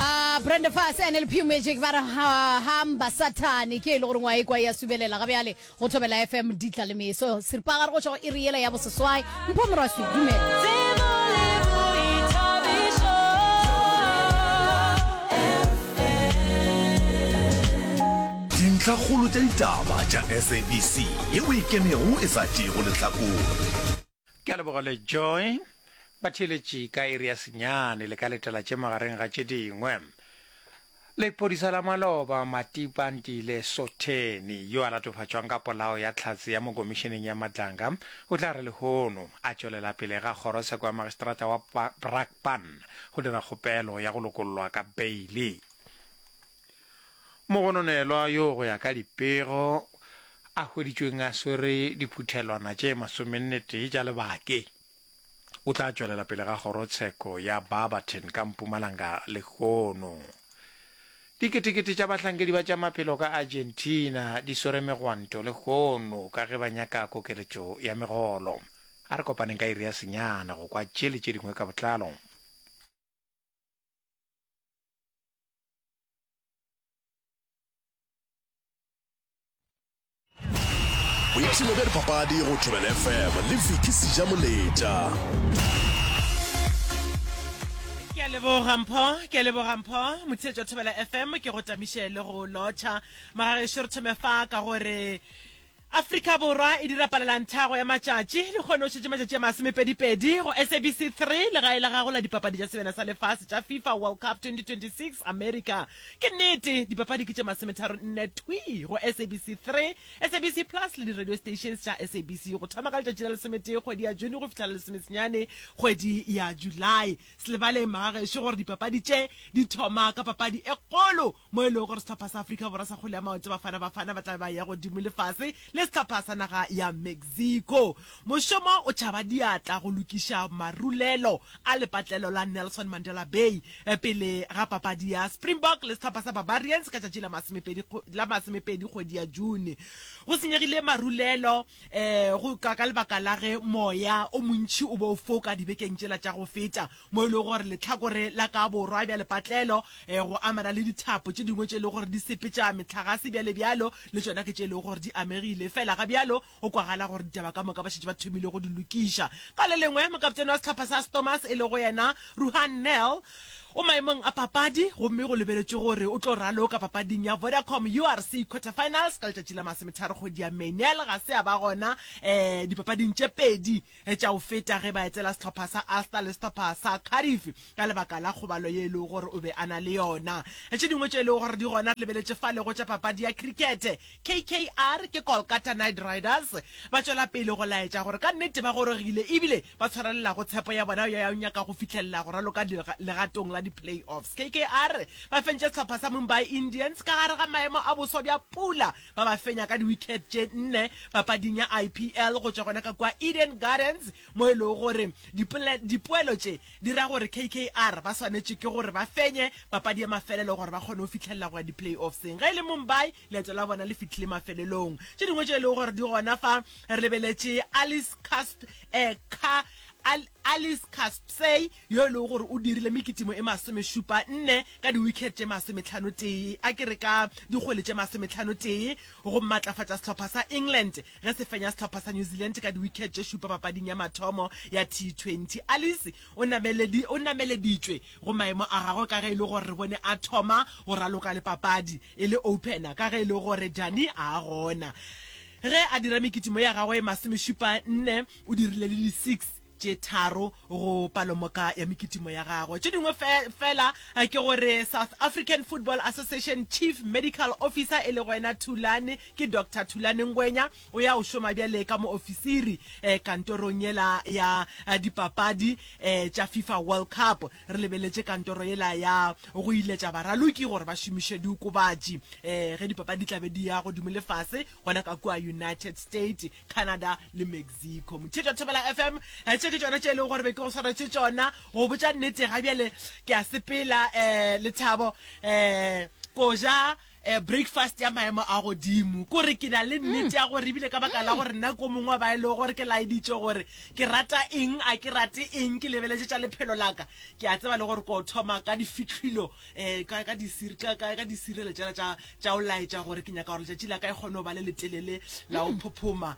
Ah, Brenda Fassie and LP Magic ba re ha- hamba satane ke e le gore ngwa e kwa ya subelela ga bjale go thobela fm ditla le meso seripagare go tšwa go iri yela ya boseswai mpho moraswi dumela Tsebo le boithabišo. dintlhakgolo tša ditaba tša sabc ye o e kemego e sa tšeego lehlakore Ke a leboga le Joy. Ba theeletše ka iri ya senyane le ka letela tše magareng ga tše dingwe. Lephodisa la maloba Matipa Ntile Sotheni yo a latofatšwang ka polao ya Tlhatse ya mo Komišeneng ya Madlanga o tla re lehono a tšwelela pele ga kgorotsheko ya Magistrata wa Brakpan go dira kgopelo ya go lokollwa ka beili. Mogononelwa yo go ya ka dipego a hweditšweng a swere diphuthelwana tše masomennetee tša lebake o tla tšwelela pele ga kgorotsheko ya Barberton ka mpumalanga lehono. Diketekete tša bahlankedi ba tša maphelo ka Argentina di swere megwanto lehono ka ge ba nyaka kokeletšo ya megolo. A re kopaneng ka iri ya senyana go kwa tše le tše dingwe ka botlalo. boipshino bja dipapadi go tšwebel fm le viki seja moletša ke a leboga mpho ke a leboga mpho motheetša thobela fm ke go tamiše le go lotšha magagešo re thome fa ka gore Afrika Borwa e dira palelanthhago ya matšatši le kgono o šetše matšatši a masomepedipedi go SABC Three, legae la gago la dipapadi tša sebjana sa lefase tša FIFA World Cup 2026 America. Ke nnete, dipapadi ke tše masometharo nne thwii go SABC Three, SABC Plus le di-radio stations tša SABC go thoma ka letšatši la lesometee kgwedi ya June go fihla la lesomesenyane kgwedi ya July. Se lebale magagešo gore dipapadi tše di thoma ka papadi e kgolo mo e lego gore sehlopha sa Afrika Borwa sa kgwele ya maoto Bafana Bafana ba tla be ba ya godimo le fase le sehlopha sa naga ya Mexico. Mošomo o tšhaba diatla go lokiša marulelo a lepatlelo la Nelson Mandela Bay pele ga papadi ya Springbok le sehlopha sa Barbarians ka tšatši la masomepedi kgwedi ya June. Go senyegile marulelo um go ka ka lebaka la ge moya o montšhi o be o foka dibekeng tšela tša go feta mo e lego gore letlhakore la ka borwa bja lepatlelo um go amana le dithapo tše dingwe tše e lego gore di sepetša metlhagase bjale bjalo le tšona ke tše e lego gore di amegile fela ga bjalo go kwagala gore ditaba ka moka ba šetše ba thomile go di lokiša ka le lengwe mokaptene wa sehlopha sa stormers e lego yena ruhan nel O maemong a papadi gomme go lebeletšwe gore o tlo raloka papading ya Vodacom URC Quarterfinals ka letšatši la Masometharo kgwedi ya May. Nel ga se a ba gona um dipapading tše pedi tša go feta ge ba etela sehlopha sa Ulster le sehlopha sa Cardiff ka lebaka la kgobalo ye e lego gore o be a na le yona. Tše dingwe tše e lego gore di gona re lebeletše fa lego tša papadi ya cricket. KKR ke Kolkata Knight Riders ba tšwela pele go laetša gore ka nnete ba gorogile ebile ba tshwarelelago tshepo ya bona ya go nyaka go fihlelela go raloka legatong la di-playoffs. KKR ba fentše sehlopha sa Mumbai Indians ka gare ga maemo a boswa bja pula ba ba fenya ka di-wicket tše nne papading ya IPL go tšwa gona ka kua Eden Gardens mo e lego gore dipoelo tše di ra gore KKR ba swanetše ke gore ba fenye papadi ya mafelelo gore ba kgone go fihlelela go ya di-playoffseng ge e le Mumbai Leeto la bona le fitlhile mafelelong. Tše dingwe tše e lego gore di gona fa re lebeletše Alice Casp, eh, ka, Al, Alice Caspsey yo e lego gore o dirile mekitimo e masomešupa nne ka diwicket tše masometlhano tee, a ke re ka dikgwele tše masometlhano tee, go matlafatša sehlopha sa England ge se fenya sehlopha sa New Zealand ka diwicket tše šupa papading ya mathomo ya T20. Alice o, nameledi, o nameleditšwe go maemo a gagwe ka ge e le gore re bone a thoma go raloka le papadi. E le opener ka ge e le gore Dani a a gona. Ge a dira mekitimo ya gagwe e masomešupa nne, o dirile le di six tše tharo go palomoka ya mekitimo ya gagwe. Tše dingwe fe, fela ke gore South African Football Association Chief Medical Officer e lego ena Thulane, ke Doctor Thulane Ngwenya, o ya o šoma bjale ka moofisiri kantorong yela ya dipapadi tša Fifa World Cup. Re lebeletše kantoro yela ya go iletša baraloki gore ba šomiše diokobatši um ge dipapadi di tla be di ya godimo le fase gona ka kua United States, Canada le Mexico. Mothetwa Thobela FM, tše ke tšona tše e lego gore be ke go swaretše tšona. Go botša nnete ga bjale ke a sepela um Lethabo um Koja. E, breakfast ya maemo a godimo. Ke gore ke na le nnete ya gore ebile ka baka la gore nna ko mongwe wa ba e lego gore ke laeditše gore ke rata eng, a ke rate eng, ke lebeletše tša lephelo la ka, ke a tseba le gore ko thoma ka difihlwilo um ka ka disir ka ka ka disirelo tšela tša tša go laetša gore ke nyaka gore letšatši la ka e kgone go ba le letelele la go phophoma.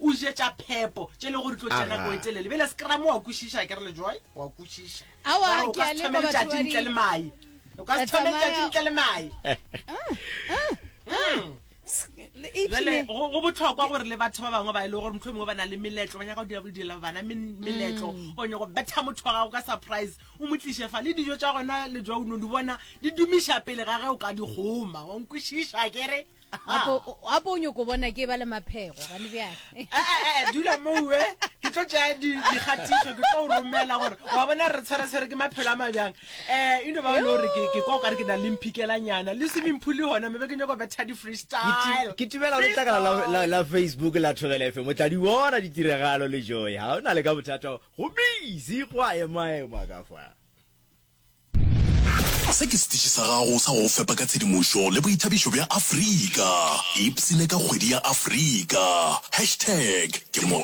O je tša phepo, tše le gore tlo tša nako e telele. Bjale se ke ramo wa kwešiša, ke re le joy, wa kwešiša. Awa, ke a leba batho ba di. O ka se thome letšatši ntle le mae. O ka se thome letšatši ntle le mae. Ah, ah, ah. jale go botlhokwa gore le batho ba bangwe ba e le gore motlho mongwe ba na le meletlo ba nyaka go dira go direla bana meletlo mm. o nyako betha motho wa gago ka surprise o mo tliše fa le dijo tša gona le jwa o no di bona di dumiša pele ga ge o ka di goma wa nkwešiša kere gape o nyoko bona ke ba le maphego gane bjale eh, eh, eh, dula mowe ke tlo tšea dikgatiso ke tlo romela gore wa bona re tshwaretshwere ke maphelo a mabjang um eno ba no gore ke kwa kare ke na le mphikelanyana le swimming pool gona mebe ke nyako betha di-freestyle ke tibela letlakala la facebook la thobela fm o tla di bona ditiragalo le joy ga o na le ka bothata go busy go a emaema ka fa Se ke setiši sa gago sa go go fepa ka tshedimošo le boithabišo bja Afrika. Ipsine ka kgwedi ya Afrika. Hashtag ke mo.